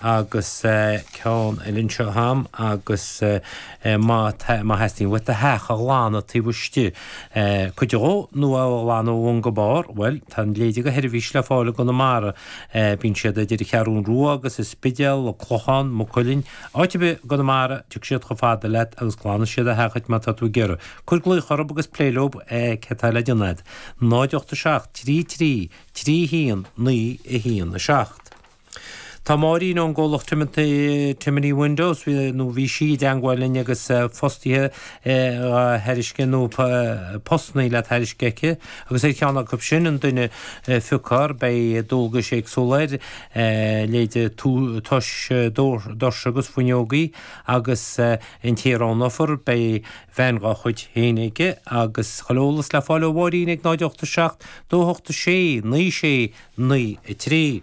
agus ceann eile anseo a'm agus má tá, má theastaíonn uait do theach a ghlanadh taobh istigh, cuid dhó nó é a ghlanadh ó bhun go barr, bhuel, tá a leithéide de sheirbhís le fáil i gConamara. Bíonn siad idir an Cheathrú Rua agus an Spidéal, an Clochán, Maigh Cuilinn, áit ar bith i gConamara, tiocfaidh siad chomh fada leat agus glanfaidh siad do theach duit má tá tú ag iarraidh. Cuir glaoch orthub agus pléigh leob céard atá le déanamh a'd. 0 87 3 3 3 1 9 1 7 Tá Máirín ón gcomhlacht Timoney Windows nó bhí sí i dteangmháil linn agus fostaithe a thairiscint nó postannaí le tairiscint aici agus ar cheann acu sin an duine a phiocfar beidh dualgais éagsúla air leithéide tomhais doirse agus fuinneogaí agus an té a roghnófar beidh veain dá chuid féin aige agus chuile eolas le fáil ó Mháirín ag 0 8 7 2 8 6 9 6 9 3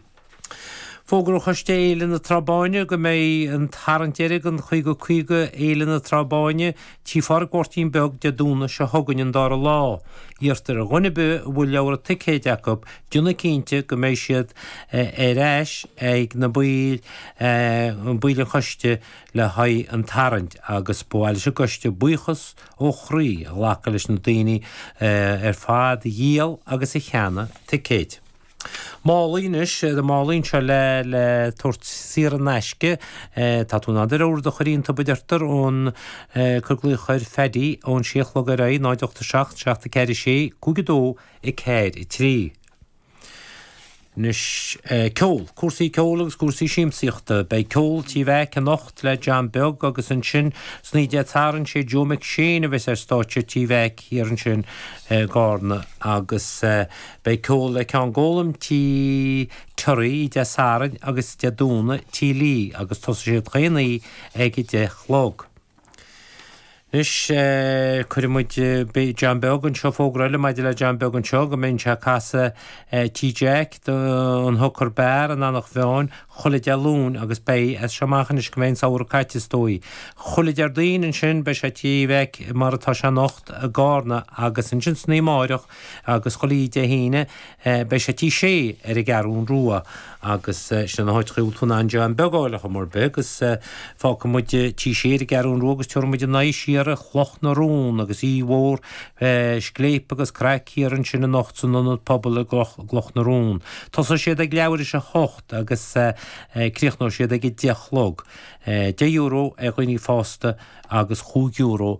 Fógra Choiste Fhéile na Trá Báine go mbeidh an tarraingt deiridh don Chaoga Caoga Fhéile na Trá Báine tí Phádraic Mháirtín Beag Dé Domhnaigh seo chugainn an dara lá Iarrtar ar dhuine ar bith a bhfuil leabhra ticéad acu déanamh cinnte go mbeidh siad ar ais ag na baill an choiste le haghaidh an tarraingt agus ba mhaith leis an gcoiste buíochas ó chroí a ghlacadh leis na daoine ar fad a dhíol agus a cheannaigh ticéid. Málaí anois tá málaí anseo le le tabhairt saor in aisce. Tá tú in ann do leabhar do chur iontub a deirtear ón Cuir glaoch ar Phaddy ón sé a chlog ar aghaidh 0 8 7 7 4 6 5 2 4 3. Anois, ceol. Cúrsaí ceoil agus cúrsaí siamsaíochta. Beidh ceol Tí Mheaic anocht le John Beag agus ansin san oíche Dé Sathairn sé Joe McShane a bheas ar stáitse Tí Mheaic thiar ansin i gCarna agus beidh ceol le Ceann Gólaim, Tí Terry, Dé Sathairn agus Dé Domhnaigh, Tí Lee agus tosaíonn siad chaon oíche ag a deich a chlog. Anois, cuirfidh muid, beidh John Beag anseo, fógra eile maidir le John Beag anseo, go mbeidh sé ag casadh Tí Jack, An Hooker Bar, in Eanach Mheáin, chuile Dé Luain agus beidh, as seo amach anois go mbeidh an samhradh caite is dóigh. Chuile Déardaoin ansin beidh sé Tí Mheaic mar atá sé anocht i gCarna agus ansin san oíche amárach, Agus chuile Dé hAoine, beidh sé Tí Sé ar an gCeathrún Rua agus sin iad na háiteachaí a bhfuil tú in ann John Beag a fháil ar chuma ar bith agus fágfaidh muid Tí Sé ar an gCeathrún Rua agus tabharfaidh muid a n-aghaidh siar ar Chloch na Rón agus oíche mhór scléip agus craic thiar ansin anocht san Ionad Pobail i gCloch na Rón. Tosóidh siad ag leathuair théis a hocht agus críochnóidh siad ag a deich a chlog. Deich euro ar dhaoine fásta agus chúig euro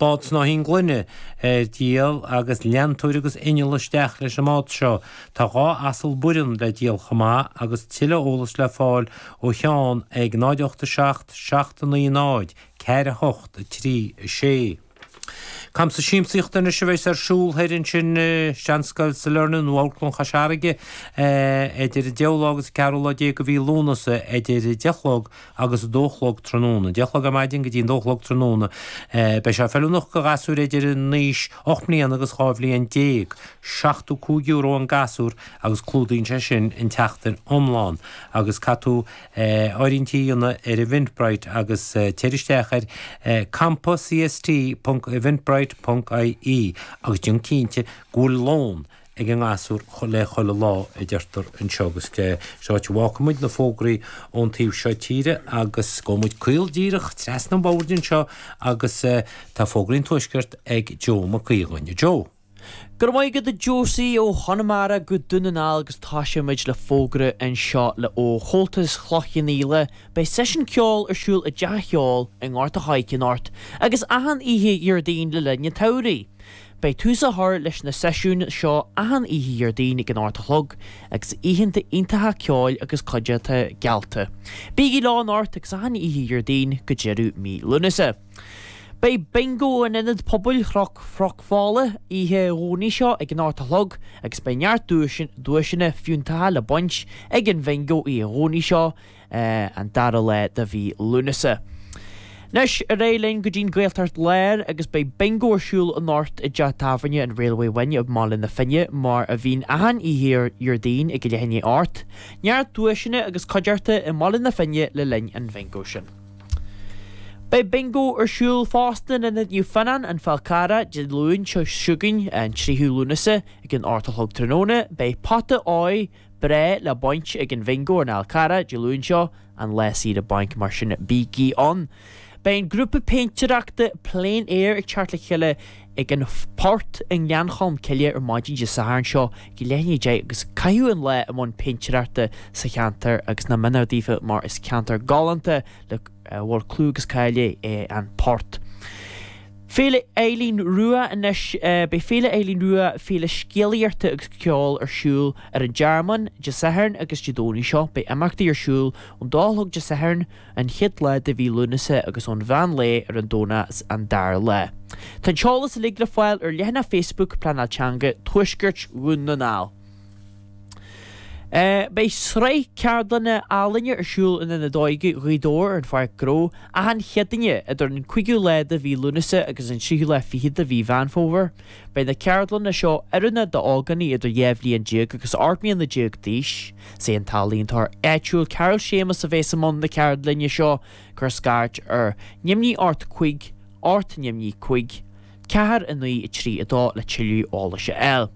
Bád snáithín gloine ar díol agus leantóir agus inneall isteach leis an mbád seo. Tá dhá asal Bhoireann le díol chomh maith agus tuilleadh eolas le fáil ó Sheán ag 0 87 790 4 8 3 6. Camsa siamsaíochta anois a bheas ar siúl thoir ansin i Seanscoil Sailearna nó Amharclann Chois Fharraige idir an deichiú lá agus an ceathrú lá déag de mhí Lúnasa idir deich a chlog agus a dó a chlog tráthnóna. Deich a chlog ar maidin go dtí an dó a chlog tráthnóna. Beidh sé feiliúnach do ghasúir idir an aois ocht mbliana agus dhá bhliain déag. Seachtú cúig euro an gasúr agus clúdaíonn sé sin an tseachtain iomlán. Agus caithfidh tú áirithintí a dhéanamh ar Eventbrite agus téigh isteach ar campaCST ponc eventbrite ponc IE agus déan cinnte go bhfuil lón ag an ngasúr le chuile lá, a deirtear anseo agus sin an áit a bhfágfaidh muid na fógraí ón taobh seo tíre agus gabhfaidh muid caol díreach trasna an bhóthair anseo agus tá fógraí an tuaiscirt ag Joe Mac Aodha inniu. Joe. Go raibh maith agat a Josie, ó Chonamara go Dún na nGall agus tosóidh muid le fógra anseo le ó Chomhaltas Chloich Cheann Fhaola, beidh seisiún ceoil ar siúl i dTeach an Cheoil i nGort a' Choirce anocht agus achan oíche Dhéardaoin le linn an tsamhraidh. Beidh tús á chur leis na seisiúin seo achan oíche Dhéardaoin ag an ocht a chlog, agus oícheanta iontacha ceoil agus cuideachta geallta. Bígí leo anocht agus achan oíche Dhéardaoin go deireadh mí Lúnasa. Beidh Bingo in Ionad Pobail Chnoc Fola oíche Dhomhnaigh seo ag an ocht a chlog agus beidh neart duaiseanna fiúntacha le baint ag an Bhingo oíche Dhomhnaigh seo an dara lá de mhí Lúnasa. Anois, ar aghaidh linn go dtí'n Ghaeltacht Láir agus beidh Bingo ar siúl anocht i dteach tábhairne an Railway Inn i mBaile na Finne mar a bhíonn achan oíche Dhéardaoin ag leath i ndiaidh a hocht. Neart duaiseanna agus cuideachta i mBaile na Finne le linn an Bhingo sin. Beidh Bingo ar siúl fosta in Ionad Naomh Fionnán, An Fál Carrach, Dé Luain seo chugainn, an 3ú Lúnasa, ag an 8 a chlog tráthnóna. Beidh pota áidh, Breá le baint ag an bhingo ar an Fhál Carrach Dé Luain seo, an lá saoire bainc mar sin bígí ann! Beidh an grúpa péintéireachta Plein Air ag teacht le chéile ag an Port i nGleann Cholm Cille ar maidin Dé Sathairn seo ag leath i ndiaidh a deich agus caithfidh siad an lá i mbun péintéireachta sa cheantar agus nach méanar daofa mar is ceantar galánta a bhfuil clú agus cáil air é an Port. Féile Eileen Rua Anois beidh Féile Eileen Rua, féile scéalaíochta agus ceoil, ar siúl ar an Tearmann Dé Sathairn agus Dé Domhnaigh seo. Beidh imeachtaí ar siúl ón dó a chlog Dé Sathairn, an chéad lá de mhí Lúnasa, agus ón mheán lae ar an Domhnach, an dara lá. Tá an t-eolas uilig le fáil ar leathanach Facebook Pleanáil Teanga Thuaisceart Dhún na nGall. Beidh sraith ceardlanna ealaíne ar siúl in Ionad Óige Ghaoth Dobhair ar an Pháirc Ghnó achan Chéadaoin idir an 5ú lá de mhí Lúnasa agus an 3ú lá fichead de mhí Mheán Fómhair. Beidh na ceardlanna seo oiriúnach d'ógánaigh idir dhá bhliain déag agus 18 mbliana d'aois. Is é an t-ealaíontóir áitiúil Carol Séamus a bheas i mbun na ceardlainne seo cuir scairt ar neamhní 8 5, 8 neamhní 5, 4, 9, 3, 2 le tuilleadh eolais a fháil.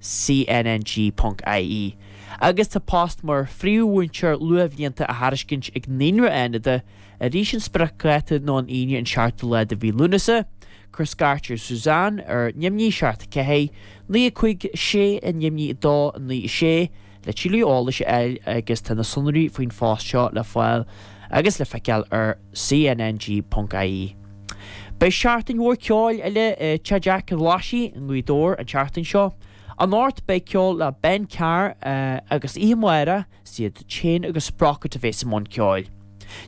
cnng.ie Agus tá post mar phríomh-mhúinteoir luathbhlianta á thairiscint ag Naíonra Fhánada arís an spriocdháta nó an Aoine an 7ú lá de mhí Lúnasa Cuir scairt ar Suzanne ar, neamhní, seacht a ceathair, naoi a cúig, sé a neamhní a dó a naoi a sé, le tuilleadh eolais a fháil agus tá na sonraí faoin phost seo le fáil agus le feiceáil ar cnng.ie. Beidh seachtain mhór ceoil eile Tigh Jack an Ghlaisigh i nGaoth Dobhair an tseachtain seo. Anocht beidh ceol le Ben Carr agus oíche amárach, is iad Chain agus Sprocket a bheas i mbun ceoil.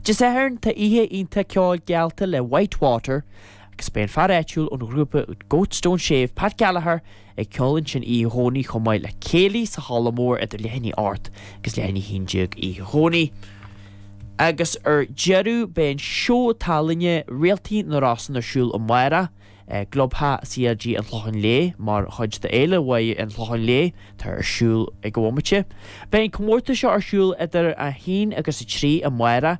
Dé Sathairn tá oíche iontach ceoil geallta le White Water agus beidh an fear áitiúil ón ghrúpa úd Goats Don't Shave, Pat Gallagher, Ag ceol ansin Oíche Dhomhnaigh chomh maith le céilí sa halla mór idir leath i ndiaidh 8 agus leath i ndiaidh 11 oíche Dhomhnaigh. Agus ar deireadh beidh an seó tallainne Réaltaí na Rosann ar siúl amárach i gClubtheach CLG an Chlocháin Léith mar chuid de Fhéile Mháire an Chlocháin Léith atá ar siúl ag an bhomaite. Beidh an comórtas seo ar siúl idir 1 agus 3 amárach.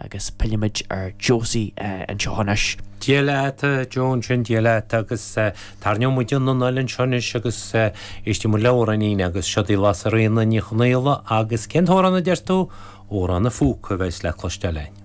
Agus pilleimid ar Josie anseo anois. Dia leat Josie, Dia leat agus tairneoidh muid anall anseo anois agus éistfidh muid le amhráinín agus seod í Lasairfhíona Ní Chonaola agus cén t-amhrán a deir tú? Amhrán an Phúca a bheas le cloisteáil againn.